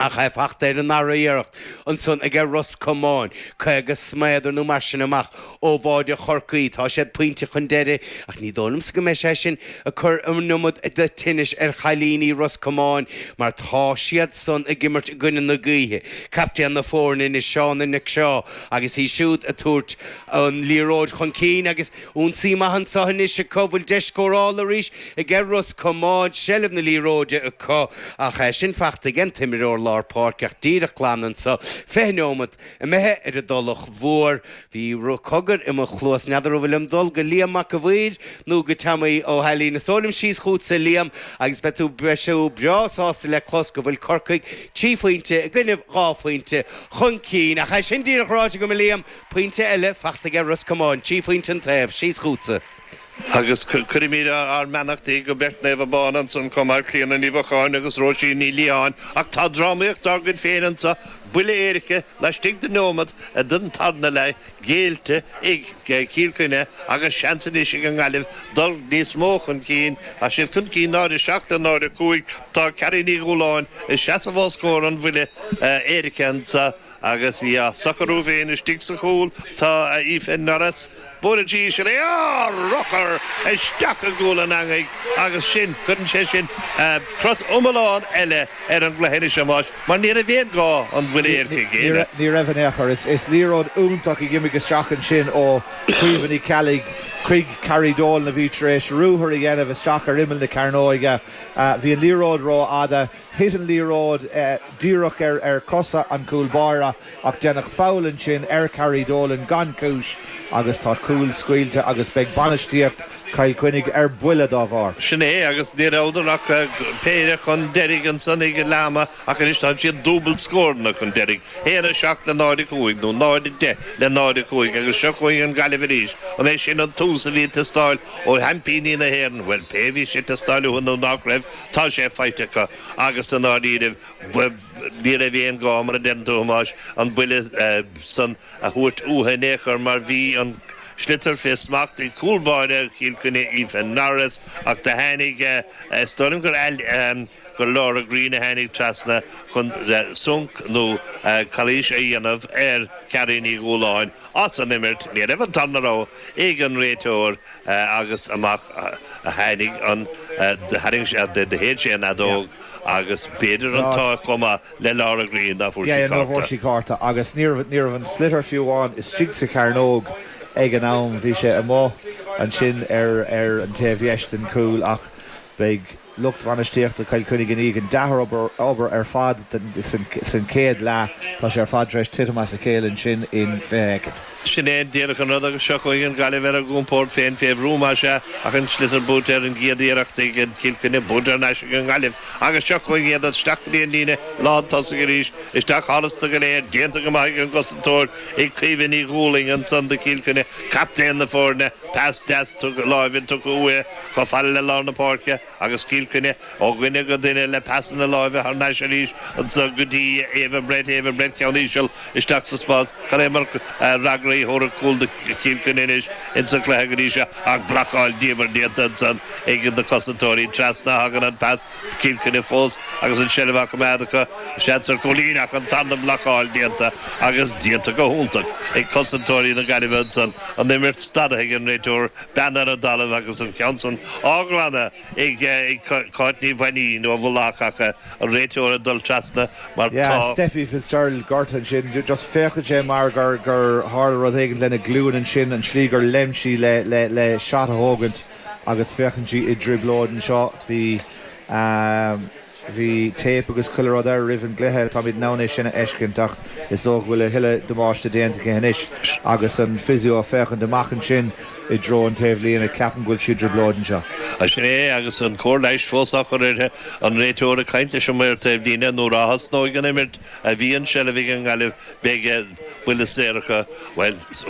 ach é fachta ar an ndara iarracht, ansan aige Ros Comáin, cúig is méadar nó mar sin amach ó bháide Chorcaí. Tá siad pointe chun deiridh, ach ní dóigh liomsa go mbeidh sé sin ag cur an iomad tinnis ar chailíní Ros Comáin, mar tá siad san ag imirt i gcoinne na gaoithe, captaen na foirne anois, Shauna Nic Craith, agus í siúd ag tabhairt an liathróid chun cinn agus. Ionsaí maith anseo anois acu, bhfuil deis scórála arís aige Ros Comáin, seilbh na liathróide acu ach é sin fachta aige an imreoir lár páirce ach díreach glan anseo, fiche neomat imithe ar an dTulach Mhór. Bhí cogar i mo chluas, n'fheadar an bhfuilim ag dul go Liam Mac a' Mhaoir nó go Teaimí Ó hAilín. Is dóigh liom síos chughatsa Liam agus beidh tú, beidh tú breá sásta le clos go bhfuil Corcaigh trí phointe i gcoinnibh dhá phointe chun cinn ach é sin díreach ráite agam Liam, Pointe eile fachta aige Ros Comáin, trí phointe an taobh, síos chugatsa. Agus cuirimid ár mbeannachtaí go beirt Naomh Abán ansan chomh maith, Clíona Ní Mhíocháin agus Róisín Ní Liatháin. Ach tá drámaíocht dár gcuid féin anso, buille éirice laistigh de neomat den tarna leath géillte ag Cill Chainnigh agus seans anois ag an nGaillimh dul níos mó chun cinn. Tá siad chun cinn 0:07 le 0:05. Tá Carrie Ní Dhúláin ag seasamh os comhair an bhuille éirice anso. Agus í á socrú féin istigh sa chúl, tá Aoife Norris, buaileann sí íseal é, urchar isteach i gcúl an eangaigh agus sin, cuireann sé sin crot iomlán eile ar an gcluiche anois a Thomáis, mar ní raibh aon ghá an buille éirice a ghéilleadh. Ní raibh in aon chor. Is liathróid iontach a d'imigh isteach ansin ó Caoimhe Ní Cheallaigh chuig Carrie Dolan a bhí tar éis ruathar a dhéanamh isteach ar imeall na cearnóige. Bhí an liathróid rófhada. Thit an liathróid díreach ar chosa an chúlbáire ach deineadh foul ansin ar Carrie Dolan gan chúis agus tá cúl scaoilte agus beidh bainistíocht Chill Chainnigh ar buile dá bharr. Sin é agus ní rabhadar ach péire chun deiridh ansan ag an leath ama ach anois tá siad dúbailt scóranna chun deiridh, 1, 7 le 0, 5, nó 0, 10 le 0, 5, agus seo chugainn an Ghaillimh arís. An é sin an tús a bhí ag teastáil ó sheaimpíní na hÉireann? Bhuel, pé bhí sé ag teastáil uathu nó nach raibh, Tá sé faighte acu, agus i ndáiríribh ní raibh aon ghá, mar a deireann tú, a Thomáis, an buille san a thabhairt uathu in aon chor, mar bhí an sliotar fé smacht ag cúl báire Chill Chainnigh, Aoife Norris, ach do tháinig, is dóigh liom gur gur Laura Greene a tháinig trasna chun sonc nó calaois a dhéanamh ar Charrie Ní Dhúláin as an imirt, ní raibh an tarna rogha ag an réiteoir agus amach a tháinig an tharraing sé de do shéid sé an fheadóg agus b'fhéidir an t-ádh chomh maith le Laura Greene ná fuair sí, ná fuair sí cárta agus ní ní raibh an sliotar fiú amháin istigh sa chearnóg ag an am bhí sé amuigh ansin ar ar an taobh dheis den chúl ach beidh lucht bhainistíochta Chill Chainnigh i ndiaidh an dea-obair ar fad san chéad leath, tá sé ar fad tar éis titim as a chéile ansin in 20 shoicind. Sin é an díreach an rud agus seo chugainn an Ghaillimh ar a gcompórd féin fé bhrú más ea ach an sliotar buaite ar an gcéad iarracht ag Cill Chainnigh buaite thar n-ais ag an nGaillimh agus seo chugainn iad isteach go dtí an líne lán tosaigh arís. Isteach thánaista go léir déanta go maith ag an gcosantóir ag Caoimhe Ní Dhúlaing ansan do Chill Chainnigh, captaen na foirne. Pas deas láimhe tugtha uaidh chomh fada le lár na páirce agus Cill Chainnigh ó dhuine go duine le pasanna láimhe thar n-ais arís anseo go dtí Ava Brett, Ava Brett ceann íseal isteach sa spás. Cad é mar fhreagra a thabharfadh cúl do Chill Chainnigh anois ins an cluiche go dtí seo ach blocáil diamhair déanta ansan ag na cosantóirí. Trasna a thagann an pas. Cill Chainnigh fós agus an tseilbh á coimeád acu. Seans ar chúilín ach an tarna blocáil déanta agus déanta go hiontach ag cosantóirí na Gaillimhe ansan, an imirt stadaithe ag an réiteoir, bean ar an dtalamh agus an ceann san á ghlanadh ag Cáit Ní Mhainnín ó Mhullach ach an réiteoir ag dul trasna mar tá. Steffi Fitzgerald gortha ansin. Just féachann sé mar gur tharla rud éigin lena glúin ansin, an tslí gur léim sí le shot a thógaint. Agus féachann sí i dtrioblóid anseo. Bhí, ahem, bhí téip agus chuile rud air roimh an gcluiche, táimid in ann é sin a fheiscint ach is dócha go bhfuil a thuilleadh damáiste déanta aici anois. Agus an physio ag féachaint amach ansin i dtreo an taobhlíne, ceapaim go bhfuil sí i dtrioblóid anseo. Is ea, agus an cóir leighis fós á chur uirthi, an réiteoir ag caint leis an maor taobhlíne, nuair a thosnóidh an imirt, ó bhí an tseilbh ag an nGaillimh, beidh buille saor acu. Bhuel.